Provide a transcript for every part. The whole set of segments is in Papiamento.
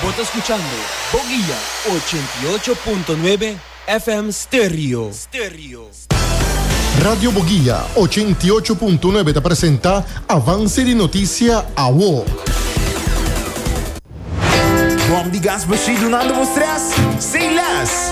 Bo ta scuchando Boguia ochenta i ocho punto nuebe FM Stereo. Radio Boguia ochenta i ocho punto nuebe ta presenta Avance di Noticia Awo. Bom di gas bo shi dunando bo stress? Say less!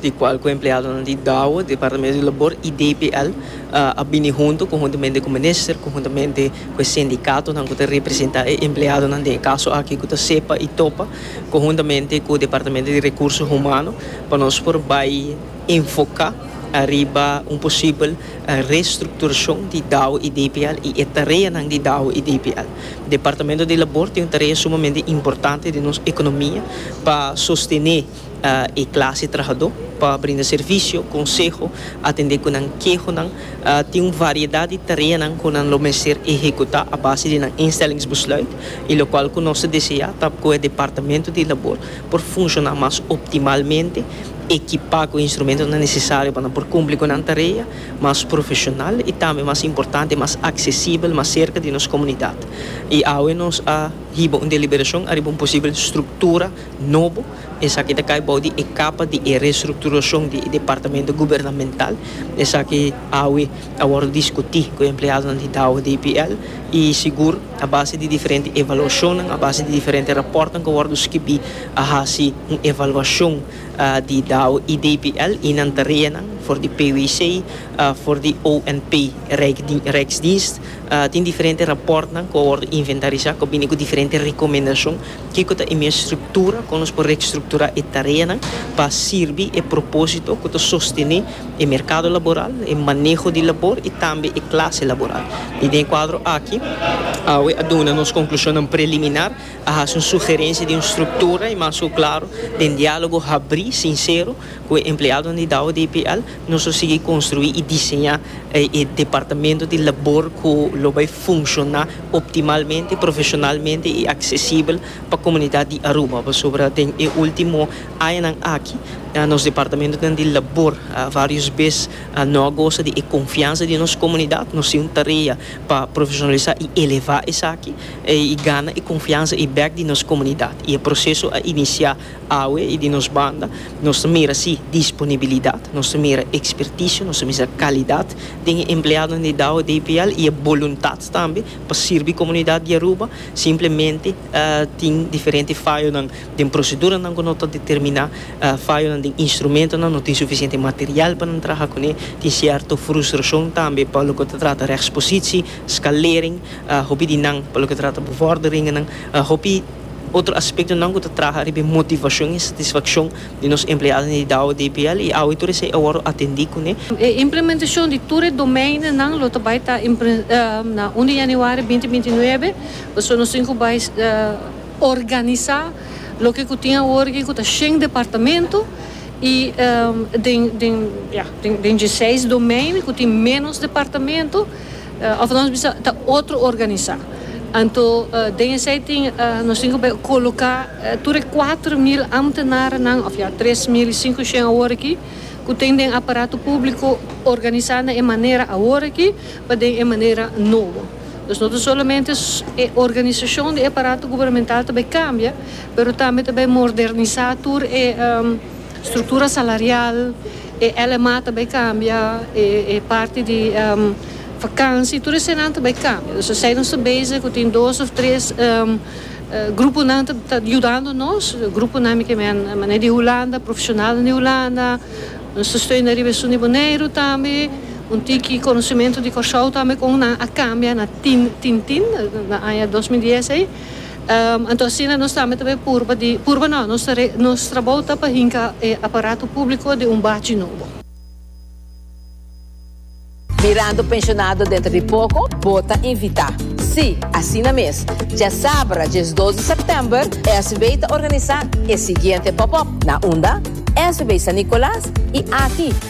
di cual cu empleadonan di Dow, Departamento di Labor y DPL a bini hunto conhuntamente cu Minister, conhuntamente cu e sindicatonan cu ta representa e empleadonan den e caso aki cu ta sepa y topa, conhuntamente cu Departamento di Recurso Humano pa nos por bay enfoca ariba un posibel restructuracion di Dow y DPL y e tareanan di Dow y DPL. Departamento di Labor tin un tarea sumamente importante den nos economia pa sostene. e clase trahadó pa brinda servicio, conseho, atendé cu nan kehonan. Tin un variedad di tareanan cu nan lo mester ehecutá a base di nan instellingsbesluit y locual cu nos ta deseá ta cu e Departamento di Labor por funcioná mas optimalmente, equipá cu instrumentonan necesario pa nan por cumpli cu nan tarea mas profesional y tambe mas importante mas accesibel, mas cerca di nos comunidad. Y awe nos a hiba un deliberacion ariba un posibel structura. Nobo, esaki ta kai bou di e kapa di e restrukturashon di e departamento gubernamental. Esaki awe a wòrdu diskutí ku e empleadonan di Dow DPL i sigur a base di diferente evaluashonnan, a base di diferente rapòrtnan ku a wòrdu skibí a hasi un evaluashon di Dow i DPL i nan tareanan for di PWC, for di ONP rijk rijksdienst. Tin diferente rapòrtnan ku a wòrdu inventarisá ku a bini ku diferente rekomendashon. Kiko ta e mes struktura kon nos por rekstrukturá e tareanan pa sirbi e propósito ku ta sostené e merkado laboral, e maneho di labor i tambe e klase laboral? I den e kuadro aki, awe a duna nos konklushonnan preliminar, a hasi un sugerensia di un struktura i mas ku klaro den diálogo habrí, sinsero, ku e empleadonan di Douwe DPL, Nos lo sigui konstruí i diseñá e departamento di labor ku lo bai funshoná optimalmente, profeshonalmente i aksesibel pa komunidat di Aruba. Pasobra den e último añanan aki nos departamentonan di labor vários bes no a gosa di e konfiansa di nos komunidat. Nos tin un tarea pa profeshonalisá i elevá esaki i gana e konfiansa i bèk di nos komunidat. I e proseso a inisiá Awe y di nos banda nos ta mira si disponibilidad, nos ta mira experticio, nos ta mira calidad den e empleadonan di Dow DPL y e boluntad tambe pa sirbi comunidad di Aruba, simplemente tin diferente fayonan den proceduranan cu no ta determina, fayonan den instrumentonan, no tin suficiente material pa nan traha cune, tin cierto frustracion tambe pa loke ta trata rechtspositie, scalering, hopi di nan pa loke ta trata bevorderingennan, hopi. Otro aspektonan ku ta traha riba e motivashon i satisfakshon di nos empleadonan di Dao DPL i awe tur esei a wòrdu atendí kuné. E implementashon di tur e domeinonan lo ta bai ta na un di yanüari binti binti nuebe, pasobra nos tin ku bai organisá loke ku tin awor aki ku ta shen departamento i den den den dje seis domein ku tin ménos departamento. Of nos bisa ta otro organisá. Anto den esei tin nos tin ke koloká tur e kuater mil ámtenarnan, òf ya tres mil i sinku shen awor aki, ku ten den aparato públiko organisá na e manera awor aki pa den e manera nobo. Dus no ta solamente e organisashon di e aparato gubernemental ta bai kambia, pero tambe ta bai mordernisá tur e struktura salarial, E LMA ta bai cambia, e parti di vakansi, tur esanan ta bai cambia. Dus esei nos ta bezig cu tin dos of tres gruponan ta yudando nos. Gruponan mi ke men manera di Hulanda, profesionalnan di Hulanda. Nos ta steuna riba esun di Boneiru tambe. Un tiki conocimentu di Corsou tambe con nan a cambia na tin tin tin, na aña dos mil dies ei. Anto asina nos tambe ta bay purba di, purba no, nos ta re, nos trabou ta pa hinca e aparato publico den un bachi nobo. Mirando pensionado dentro di poco bo ta invita. Si, asina mes. Djasabra djes dos di september SW ta organisa e siguiente pop-up, na unda? SW San Nicolas y aki.